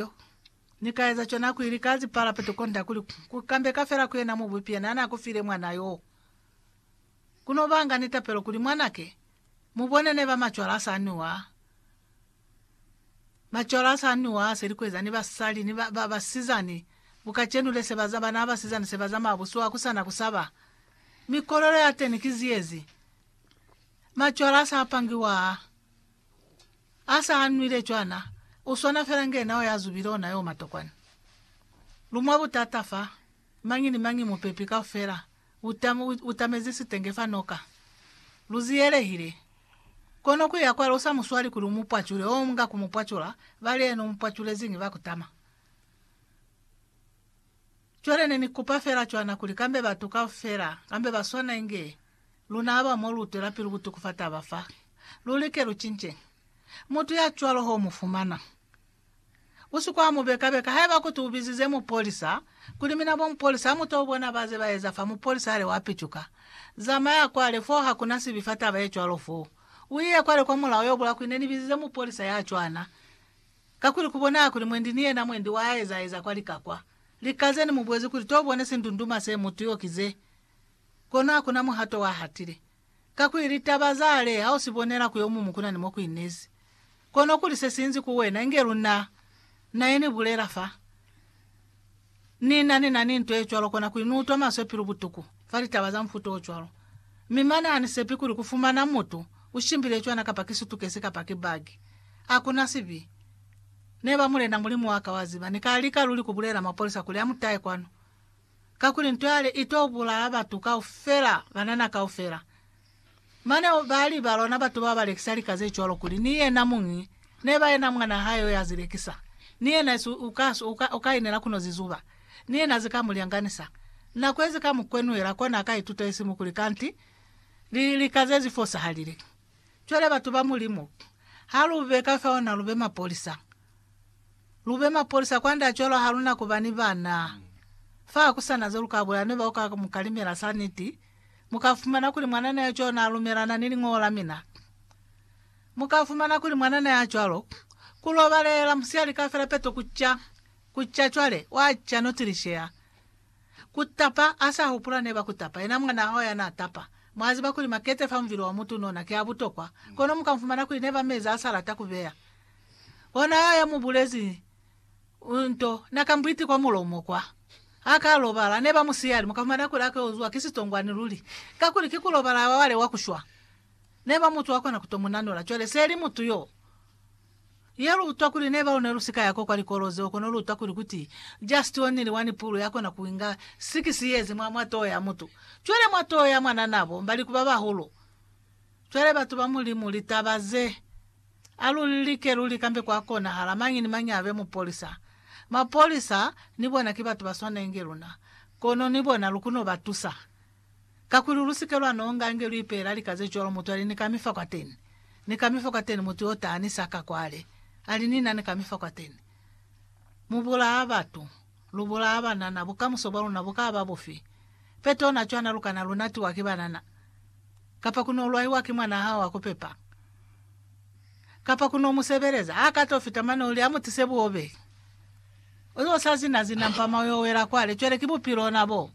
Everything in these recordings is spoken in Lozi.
Yo. Ni ka eza cona ku ili ka zi parapeto konda kuli ku kambeka fela ku yena Mubupi yena na ku file mwana yo. Ku no banga ni tapelo kuli mwanake, mu bone neba macwalo a sa nwiwa. Macwalo a sa nwiwa a seli ku eza ni basali ni ba, ba, basizani ku kacenu le se ba za, bana ba basizani se ba zamaya buswa ku sana ku saba. Mi kolelo ya teni ki ziyezi. Macwalo a sa pangiwa a. A sa hanwile cwana, u swana fela nge nao ya zubile ona yo matokwana. Lu mwa butata fa, mañi ni mañi mupepi kaufela u ta, u tamezi sitenge fa noka. Lu ziyelehile. Kono ku ya kwale u sa mu swali kuli u mu pwacule, oh, mu nga ku mu pwacula, ba li yena u mu pwaculeziñi ba kutama. Cwale ne ni kupa fela cwana kuli kambe batu kaufela, kambe ba swana inge luna aba mo lu twela pili ku tukufa taba fa, lu like lu cince. Mutu ya cwalo ho mu fumana. U si kwa mu beka beka. Haiba kuti u bizize mupolisa, kuli, Mina bomupolisa, ha mu to bona ba ze ba eza fa, mupolisa hali wa picuka. Zamaya kwale, foo ha kuna sibi fa taba ye cwalo foo. U iye kwale kwa mulao yo bula kuli, Ne ni bizize mupolisa ya cwana. Kakuli kubona kuli mwendi ni yena mwendi wa aeza-eza kwa lika kwa lika ze ni mu bulezi kuli to bone sindunduma se mutu yo ki ze, kono hakuna muhato wa hatile. Kakuli litaba za le ha u si bonela ku yo mumu kuna ni mo ku inezi, kono kuli se sinzi ku wena, inge luna, na ye ni bulela fa. Ni na ni na ni nto ye cwalo kona kuli ni utwa maswe pilu butuku fa litaba za mufuta o cwalo. Mi mane ha ni sepi kuli ku fumana mutu u shimbile cwana kapa ki sutukesi kapa ki bagi. Ha ku na sibi. Neba, Mulena Mulimu wa ka, wa ziba, ni ka lika luli ku bulela mapolisa kuli a mu tahe kwanu. Kakuli nto yale i to bulaya batu kaufela, banana kaufela. Mane o ba li, Balona batu ba ba lekisa lika ze cwalo kuli ni yena muñi ne ba yena mwan'a hae yo ya zi lekisa. Ni yena esi u ka swa, u ka, u ka inela kuno zi zuba. Ni yena azi ka mu lyanganisa. Na kwezi ka mu kwenuhela kona a ka ituta esi mu kuli kanti li, lika ze zi fosahalile. Cwale, batu ba Mulimu, ha lu be ka fao na lu be mapolisa. Lu be mapolisa kwand'a cwalo ha lu na ku ba ni bana. Fa ha ku sa na ze lu ka bulela ni bao ka mu kalimela sa niti. Mu ka fumana kuli mwanana ya cwalo n'a lumelana ni Liñolo la mina. Mu ka fumana kuli mwanana ya cwalo, ku lobalela musiyali kaufela peto ku ca, ku ca cwale, wa ca no tilisheha. Ku tapa, a sa hupula ne ba ku tapa, yena mwa naho ya n'a tapa. Mwa ziba kuli makete fa muvili wa mutu n'ona ki a butokwa, kono mu ka fumana kuli ne ba mezi a sa lata ku beya. Ona yo ya mu bulezi Nto na ka mbwiti kwa mulomo kwa. Ha ka lobala, ne ba mu siya ali muka fumana kuli a ka uzwa ki sitongwani luli, kakuli ki ku lobala wa wale wa ku shwa. Ne ba mu twa kona ku to mu nanola. Cwale se li mutu yo. Ye lu utwa kuli ne ba lu ne lu si ka ya ko kwa likolo zeo, kono lu utwa kuli kuti just only one pulu ya kona ku inga six years mwa, mwa toho ya mutu. Cwale mwa toho ya mwanana bo mba liku ba bahulu. Cwale batu ba Mulimu, litaba ze. A lu lilike luli kambe kwa konahala mañi ni mañi abe mupolisa. Mapolisa ni bona ki batu ba swanenge luna, kono ni bona lu kuno ba tusa. Kakuli lusike lwa nonga nge lu ipeela lika ze cwalo mutu ali ni kami fa kwateni, ni kami fa kwateni mutu yo ta ni sa ka kwale, ali ni na ni kami fa kwateni. Mu bulaa batu. Lu bulaa banana, bukamuso bwa luna bu ka ba bufi? Peto na cwana lu kana lu natiwa ki banana, kapa ku no lwaiwa ki mwanaa hao wa ku pepa, kapa ku no mu sebeleza. A ka to fita mane o li, A mu tise buobe. O yo sa zina-zina mpama o yo wela kwale. Cwale ki bupilo ona boo.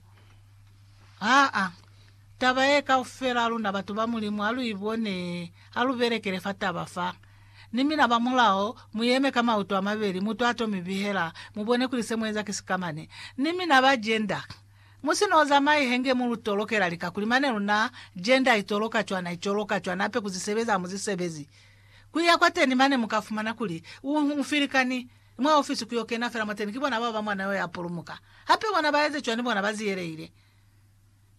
Aa, taba ye kaufela luna batu ba Mulimu ha lu i bone, ha lu belekele fa taba fa. Ni mina ba mulao, mu yeme ka mauto a mabeli, mutu a to mi bihela, mu bone kuli se mu eza ki sikamane. Ni mina ba jenda, mu si no zamai henge mu lu tolokela lika, kuli mane luna, jenda i toloka cwana, i coloka cwana, hape ku zisebezi ha mu zisebezi. Ku iya kwateni mane mu ka fumana kuli, u, u filikani, mwa ofisi ku yo kena fela mwateni ki bona bao ba mwana yo ya pulumuka. Hape bona ba eze cwani, bona ba ziyelehile.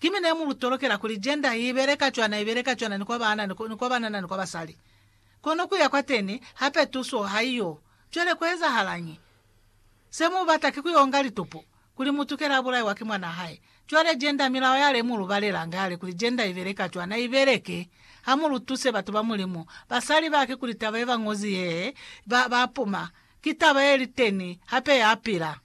Ki mina ye mu lu tolokela kuli, jenda i beleka cwana, i beleka cwana ni kwa baana, ni kwa banana, ni kwa basali. Kono kuya kwateni hape tuso haiyo. Cwale kuezahalañi? Se mubata ki kuyonga litupo, kuli mutukela abulaiwa ki mwana hae. Cwale Gender milao yale mulubalelanga yale kuli Gender ibeleka cwana ibeleke. Hamulutuse batu ba Mulimu, basali bake kuli taba yebañozi yee, ba, bapuma. Ki taba yeliteni, hape yapila.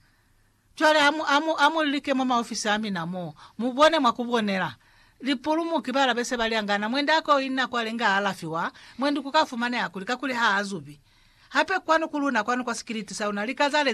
Cwale ha mu, ha mu, ha mu like mwa maofisi a mina mo, mu bone mwa ku bonela. Lipulumuki ba la be se ba li angana, mwendi a ko inna kwale nga a alafiwa, mwendi ku ka fumaneha kuli, kakuli ha a zubi. Hape kwanu ku luna, kwanu kwa sikiliti sa luna, lika za le